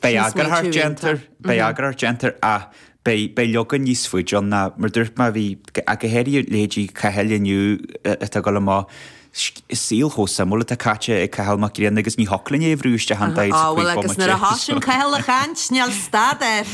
Beidh eagarthóireacht déanta air, beidh eagarthóireacht déanta air, ach beidh, beidh leagan níos faide ann ná mar dúirt mé a bhí, ach go háirithe leithéidí Chathail inniu atá ag dul amach, saol chomh suimiúil atá caite ag Cathal Mac Grianna agus ní thiocfadh linn é a bhrú isteach in 45 bomaite. Ó bhuel agus nuair a thosaíonn Cathal a chaint, níl stad air.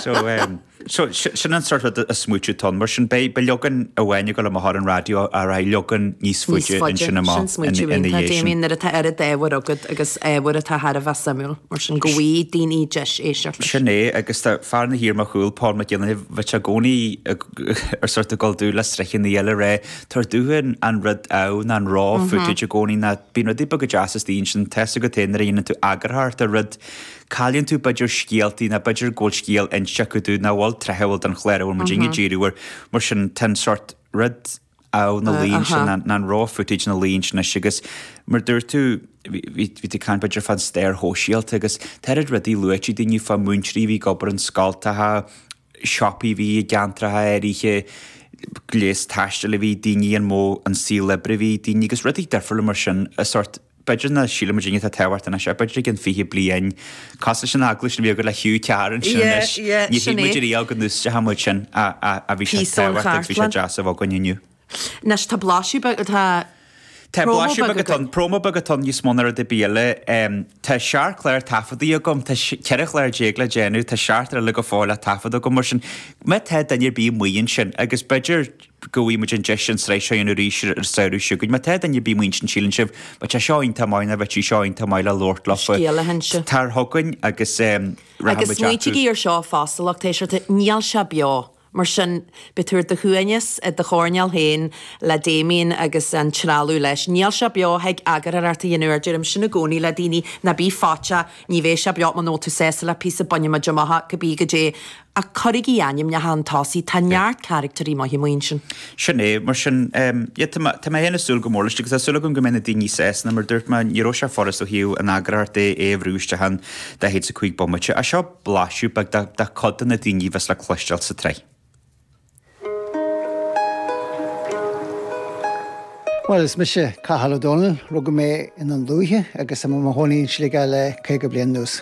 So, ehm. So, sin an sórt rud, an smaointiú atá ann. Mar sin, beidh leagan amháin ag dul amach ar an raidió, rachaidh leagan níos faide ansin amach ina dhiaidh sin. Níos faide. Sin smaoineamh iontach, Damien, nuair atá oiread ábhair agat agus ábhar atá thar a bheith suimiúil mar sin, go bhfaighidh daoine deis éisteacht leis. Sin é, agus tá fear ina shuí ar mo chúl, Paul McDevitt i gcónaí ag sórt ag gabháil domh le sraitheanna eile, ag rá tabhair domhsa an rud, an, an raw footage i gcónaí ná bíonn rudaí beaga deasa istigh ansin, tá a fhios agat féin nuair a dhéanann tú eagarthóireacht ar rud, Cailleann tú b'fhéidir scéaltaí ná b'fhéidir go bhfuil scéal inste acu domh nach bhfuil tráthúil don chlár a bhfuil muidinne ag díriú air. Mar sin tá an sórt rud amh ina luí ansin ná ná an raw footage ina luí ansin anois agus mar dúirt tú bhí bhí bhí tú ag caint b'fhéidir fán stair shóisialta agus tá oiread rudaí luaite ag daoine fá múinteoirí a bhí ag obair in scoilteacha, siopaí a bhí i gceantracha áirithe, gléas taistil a bhí ag daoine, an modh, an saol oibre a bhí ag daoine agus rudaí difriúla mar sin a sórt. B'fhéidir nach síleann muidinne atá tábhachtach anois, ach b'fhéidir i gceann 20 bliain. Cosúil leis an agallamh a bhí againn le Hugh Carr ansin anois. Níor shíl muid ariamh go n-úsáidfeadh muid sin ach bhí sé tábhachtach agus bhí sé deas é a bheith againn inniu. Anois tá blaiseadh beag, tá promo beag againn. Tá promo beag againn níos mó ná rud ar bith eile. Tá seacht gclár taifeadta agam, tá 14 chlár le déanamh, tá seacht ar a laghad go fóill le taifeadadh agam mar sin. Má tá duine ar bith amuigh ansin agus b'fhéidir, Go bhfaighidh muid an deis an tsraith seo a dhéanamh arís ar an samhradh seo chugainn. Má tá duine ar bith amuigh ansin a shíleann sibh, bheadh sé seo iontach maith nó bheadh sí seo iontach maith le labhairt leo faoi, scéal a inse. tar chugainn agus rachaidh muid ionsorthu. Agus smaointigí ar seo fosta, lucht éisteachta, níl sé beo, mar sin beidh tú ar do shuaimhneas i do choirnéal féin le Damien agus an trealamh leis. Níl sé beo, thig eagarthóireacht a dhéanamh air. Deirim sin i gcónaí le daoine, ná bí faiteach, ní bheidh sé beo, muna bhfuil tú sásta le píosa, bainfidh muid amach cibé goidé, Ach cuirigí ainmneacha chun tosaigh, tá neart carachtair maithe amuigh ansin. Sin é, mar sin. Tá mé féin ag súil go mór leis, agus tá súil agam go mbeidh na daoine sásta, mar dúirt mé, ní raibh sé furast ó thaobh an eagarthóireacht de é a bhrú isteach in 45 bomaite. Ach seo blaiseadh beag de cuid de na daoine a bheas le cloisteáil sa tsraith. Bhuel, is mise Cathal Ó Dónaill. Rugadh mé i nDún Lúiche agus tá mé i mo chónaí in Sligeach le caoga bliain anuas.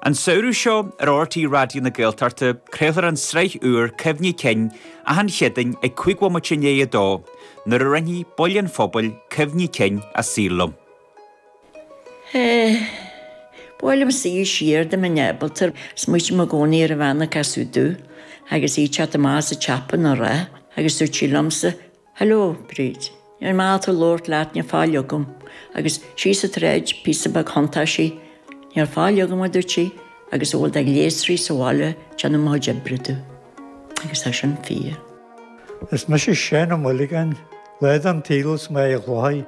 An samhradh seo ar RTÉ Raidió na Gaeltachta craolfar an tsraith úr Cuimhní Cinn achan Chéadaoin ag cúig bhomaite i ndiaidh a dó, nuair a roinnfidh baill an phobail cuimhní cinn a saoil liom. Ba mhaith liomsa siar dá mbeinn ábalta, smaoitím i gcónaí ar an bhean a casadh dom agus í ag teacht amach as an tsiopa á rá agus dúirt sí liomsa, Hello, Bríd, níl maith dom labhairt leat, níl faill agam, agus síos an tsráid píosa beag thiontaigh sí, níl faill agam, a dúirt sí, agus a bhfuil de ghléasraí sa bhaile ag déanamh mo chuid oibre dom. Agus tá sin fíor. Is mise Seán Ó Muireagáin, lá den tsaol 's mé i ghlóthach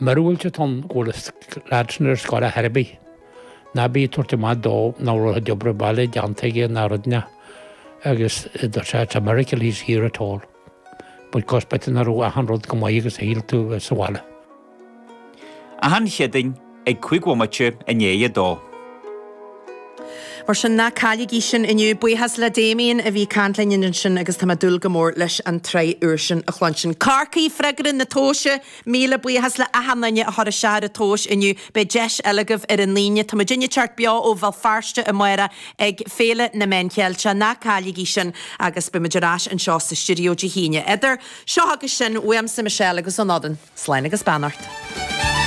Míorúilt atá ann go bhfuil an leaid sin ar scoil ar chor ar bith. Ná bí ag tabhairt amach dó nach raibh a chuid oibre baile déanta aige ná rud ná agus it is a miracle he's here at all. Because b'fhéidir nach raibh achan rud chomh maith agus a shíl tú a bheith sa bhaile. Achan Chéadaoin ag cúig bhomaite i ndiaidh a dó. Mar sin ná cailligí sin inniu. Buíochas le Damien a bhí ag caint linn ansin agus tá mé ag dúil go mór leis an tsraith úr sin a chluinstin. Corcaigh, Freagra na tomhaise! Míle buíochas le achan duine a chuir isteach ar an tomhas inniu. Beidh deis eile agaibh ar an Aoine. Tá muidinne ag teacht beo ó Bhéal Feirste amárach ag Féile na Meán Ceilteach. Ná cailligí sin agus beidh muid ar ais anseo sa stiuideo Dé hAoine. Idir seo agus sin, uaimse Michelle agus ón fhoireann, slán agus beannacht.